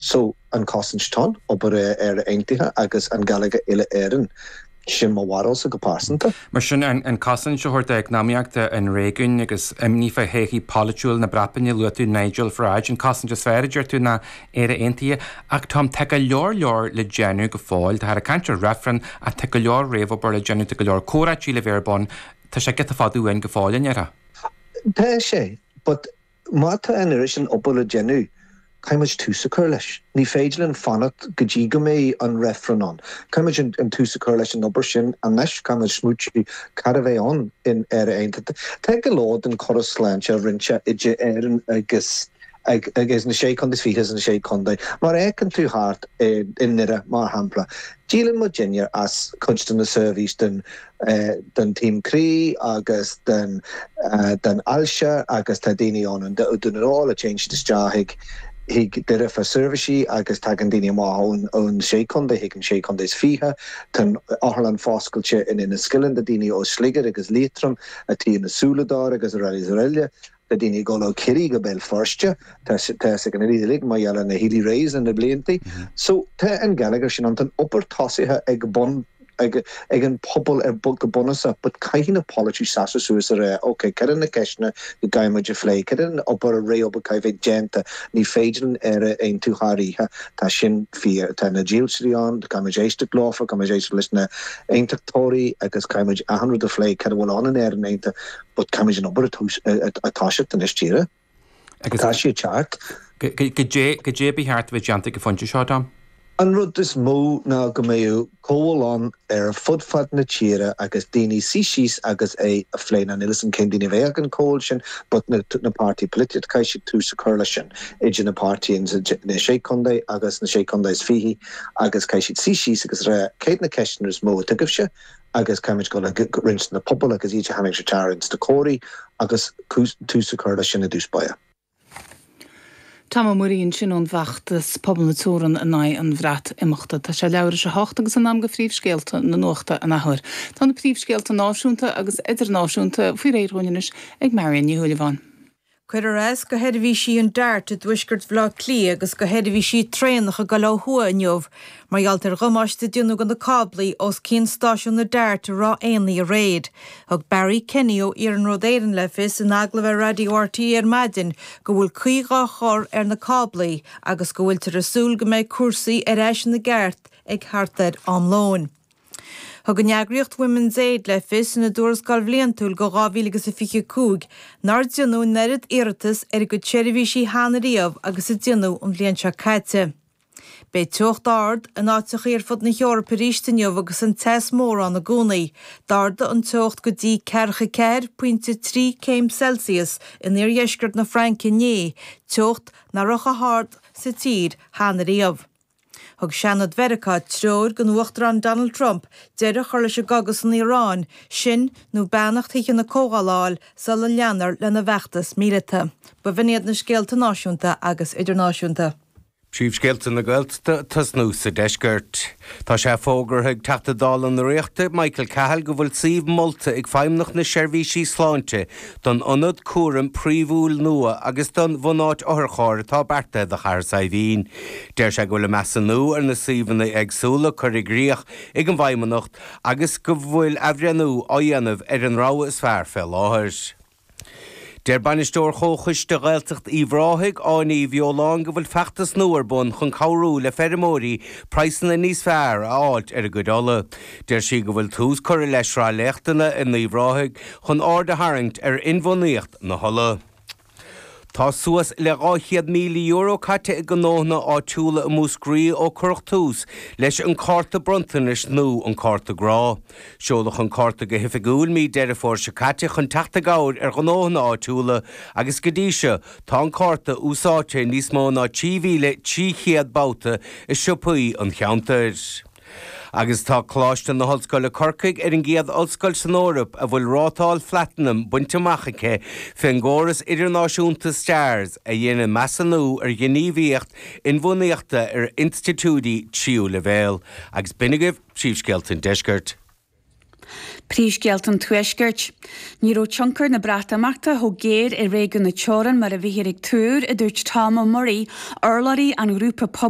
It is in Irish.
So, an cosaint don obair, Éire Aontaithe agus an geilleagar uile-Éireann, sin mo bharúlsa go pearsanta. Mar sin, an cosaint a thabhairt d'eacnamaíocht an réigiúin agus imní fá théithí polaitiúla na Breataine, luaigh tú Nigel Farage, an cosaint is fearr, a deir tú, ná Éire Aontaithe. Ach Tom, tá go leor leor le déanamh go fóill. Táthar ag caint ar reifreann ach tá go leor réamhobair le déanamh, tá go leor comhráití le bheith ar bun, tá sé giota fada uainn go fóill, an ndéarfá? Tá, tá sé. But Má tá an oiread sin obair le déanamh, caithfidh muid tús a chur leis. Ní féidir linn fanacht go dtí go mbeidh an reifreann ann. Caithfidh muid an tús a chur leis an obair sin anois. Caithfidh muid smaoitiú cad a bheidh ann in Éire Aontaithe. Tá go leor den córas sláinte roinnte idir Éirinn agus agus na sé chontae is fiche is na sé chontae. Má fhéacann tú thart i nDoire mar shampla, díolann muidinne as cuid de na seirbhís den den taom croí agus den ailse agus tá daoine ann i nDún na nGall a téann siad isteach chuig Doire fá seirbhísí agus tagann daoine amach ón sé chontae chuig an sé chontae is fiche. Tá an otharlann foscailte in Inis Ceithleann do daoine ó Sligeach agus Liatroim a téann na súile dóibh agus araile is araile. Tá daoine ag dul ó Chiarraí go Béal Feirste. Tá 'fhios ag an uile dhuine mar gheall ar na Healy Raes le na bliantaí so tá an geilleagar sin ann. Tá an obair tosaithe ag bun, ag, ag an pobal ar, go bunúsach but caithfidh na polaiteoirí seasamh suas a rá ok cad iad na ceisteanna go gcaithfidh muid a phlé, cad iad an obair, réamhobair a chaithfidh a bheith déanta. Ní féidir linn Éire a aontú thar oíche. Tá sin fíor. Tá na dílseoirí ann, caithfidh muid éisteacht leofa, caithfidh muid éisteacht leis na aontachtóirí agus caithfidh muid achan rud a phlé cad a bhfuil ann in Éirinn aontaithe. But caithfimid an obair a toiseacht anois díreach. Tá sé ag teacht. Goidé a ba cheart a bheith déanta ag an phointe seo, Tom? An rud is mó ná go mbeadh comhdháil ann ar fud fad na tíre agus daoine suí síos agus é a phlé. Now níl 'fhios a'm cén daoine a bheadh ag an comhdháil sin but na na páirtithe polaitiúil caithfidh siad tús a chur leis sin idir na páirtithe in na sé contae agus na sé contae is fiche agus caithfidh siad suí síos agus rá céard na ceisteanna is mó a tugaimhse agus caithfimid dul roimh na pobail agus iad a tharraingt isteach ins na comhráití agus tús a chur leis sin i dtús báire. Tom Murray ansin ón bhfeachtas Pobal na Teorann in aghaidh an Bhreatimeachta. Tá sé leathuair théis a hocht agus in am do phríomhscéalta na nuachta an athuair. Tá na príomhscéalta náisiúnta agus idirnáisiúnta faoi réir dhúinn anois ag Marian Ní Shúilleabháin. Cuireadh as do sheirbhísí an Dart i dtuaisceart Bhaile Átha Cliath agus do sheirbhísí traenach ag goil ó thuaidh inniu mar gheall ar dhamáiste a déanadh do na cáblaí os cionn stáisiún an Dart i Ráth Éanaigh aréir. Thug Barry Kenny ó Iarnród Éireann le fios in agallamh ar Raidió RTÉ ar maidin go bhfuil caoi dhá chur ar na cáblaí agus go bhfuiltear ag súil go mbeidh cúrsaí ar ais ina gceart ag thart ar am lóin. Thug an eagraíocht Women's Aid le fios ina dtuarascáil bhliantúil do 2025 nár deineadh an oiread iarratas ar a gcuid seirbhísí cheana riamh agus a deineadh an bhliain seo caite. Beidh teocht ard in áiteachaí ar fud na hEorpa arís inniu agus an teas mór ann i gcónaí. D'ardaigh an teocht go dtí ceathracha 4 pointe 3 céim Celsius in iardheisceart na Fraince inné, teocht nach raibh chomh hard sa tír cheana riamh. Thug Seanad Mheiriceá treoir don Uachtarán Donald Trump deireadh a chur leis an gcogadh san Iaráin sin nó beannacht Thithe na Comhdhála a fháil sula leanfar lena bhfeachtas míleata. B'in iad na scéalta náisiúnta agus idirnáisiúnta. Príomhscéalta na Gaeltachta, ag tosnú sa deisceart. Tá sé fógartha ag Teachta Dála na Ríochta, Michael Cahill, go bhfuil suíomh molta ag feidhmeannacht na seirbhísí sláinte don ionad cúraim príomhúil nua agus don bhunáit otharchairr atá beartaithe do Chathair Saidhbhín. Deir sé go bhfuil an measúnú ar na suíomhanna éagsúla curtha i gcrích ag an bhFeidhmeannacht agus go bhfuil athbhreithniú á dhéanamh ar an rogha is fearr fé láthair. Deir Bainisteoir Chomhchoiste Ghaeltacht Uíbh Ráthaigh, Áine Uí Bheoláin go bhfuil feachtas nua ar bun chun cabhrú le feirmeoirí praghsanna níos fearr a fháilt ar a gcuid olla. Deir sí go bhfuil tús curtha le sraith léachtanna in Uíbh Ráthaigh chun aird a tharraingt ar inbhuanaíocht na holla. Tá suas le €200,000 caite ag gnóthanna áitiúla i Múscraí ó cuireadh tús leis an cárta bronntanais nua An Cárta Grá. Seoladh an cárta go hoifigiúil i mí Deireadh Fómhair seo caite chun teacht i gcabhair ar ghnóthanna áitiúla agus go dtí seo tá an cárta úsáidte i níos mó ná 3,300 babhta i siopaí an cheantair. agus tá Coláiste na hOllscoile Corcaigh ar an gcéad ollscoil san Eoraip a bhfuil rátáil Phlatanam bainte amach aici fén gcóras idirnáisiúnta STARS a dhéanann measúnú ar ghníomhaíocht inbhuanaíochta ar institiúidí tríú leibhéal agus b'in agaibh príomhscéalta an Deiscirt. Príomhscéalta an Tuaiscirt. Ní raibh tionchar na Breatimeachta chomh géar ar réigiún na teorann mar a bhíthear ag tuar, a dúirt Tom Murray, urlabhraí an ghrúpa pobail,